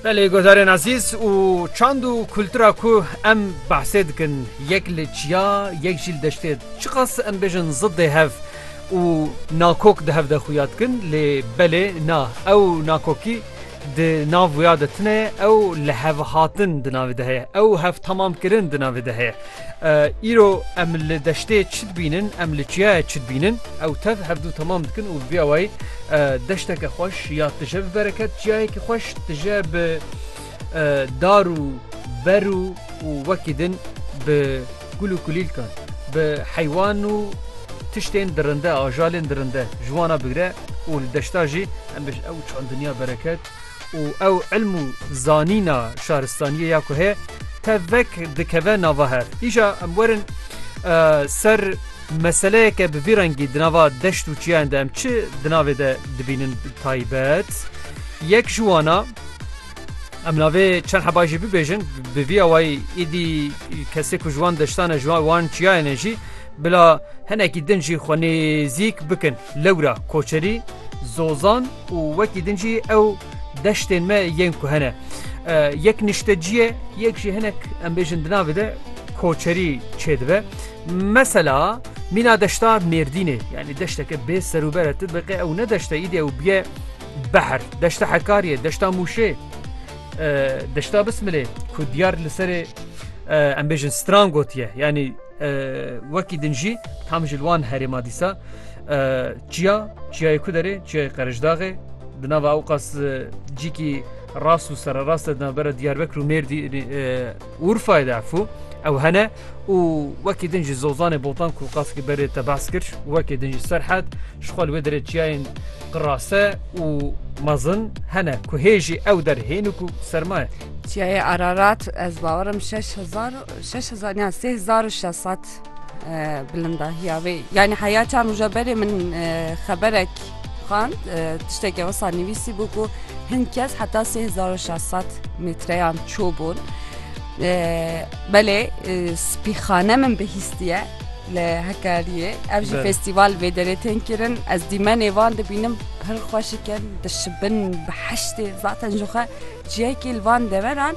Belê godarên ezîz û çand û kultura ku em behsê dikin yek li çiya yek jî li deştê çiqas em bêjin zidê hev û nakok di hev de xuya dikin lê belê na ew nakokî di nav wêya de tune ye ew li hev hatin di navê de heye ew hev tamam kirin di navê de heye. Îro em li deştê çi dibînin, em li çiyayê çi dibînin? Ew tev hevdu temam dikin û bi vîya wayî deşteke xweş ya tije bi bereket, çiyayekî xweş tije bi dar û ber û û wekî din bi gul û kulîlkan, bi heywan û tiştên dirinde, ajalên dirinde ji wan re bigire û li deşta jî em bêjin ew çend dinya bereket û ew ilm û zanîna şaristaniyê ya ku heye tevek dikeve nava hev. Îja em werin ser meseleyeke bi vî rengî di nava deşt û çiyan de em çi di navê de dibînin taybet. Yek ji wana em navê çend heba jî bibêjin bi vî awayî îdî kesê ku ji wan deştane ji wan çiyayene jî bila hinekî din jî xwenêzîk bikin. Lewra, Koçerî, Zozan û wekî din jî ew deştên me yên ku hene. Yek niştecî ye, yek jî hinek em bêjin di navê de koçerî çêdibe. Mesela mîna deşta Mêrdînê yanî deşteke bê serûber e tu biqê ew ne deşte îdî ew biye behr. Deşta Hekariyê, deşta Mûşê, deşta Bismilê ku diyar li serê em bêjin stran gotiye yanî Wekî din jî tam ji li wan herêma dîsa çiya çiyayê ku derê çiyayê Qerijdaxê di nava ew qas cîkî rast û sererast e di navbera Diyarbekir û Mêrdî Urfayê de efû ew hene û wekî din jî zozanê botan ku qaskî berê te behs kir wekê din jî serhed ji xwe li wê derê çiyayên qirase û mezin hene ku hê jî ew der hênik û sermaye. Çiyayê Ararat ez bawerim şeş hezar Şeş hezar yan sê hezar û şeş sed bilindahiya wê yanî heya çar rûja berê min xeberek xand tiştekê wisa nivîsî bû ku hin kes heta sê hezar û şeş sed metreyan çû bûn. Belê spîxane min bihîstiye li Hekariyê ev jî festîval vê derê tên kirin ez dîmenê van dibînim pir xweşikin dişibin bi heştê zaten jixwe ciyekî li van deveran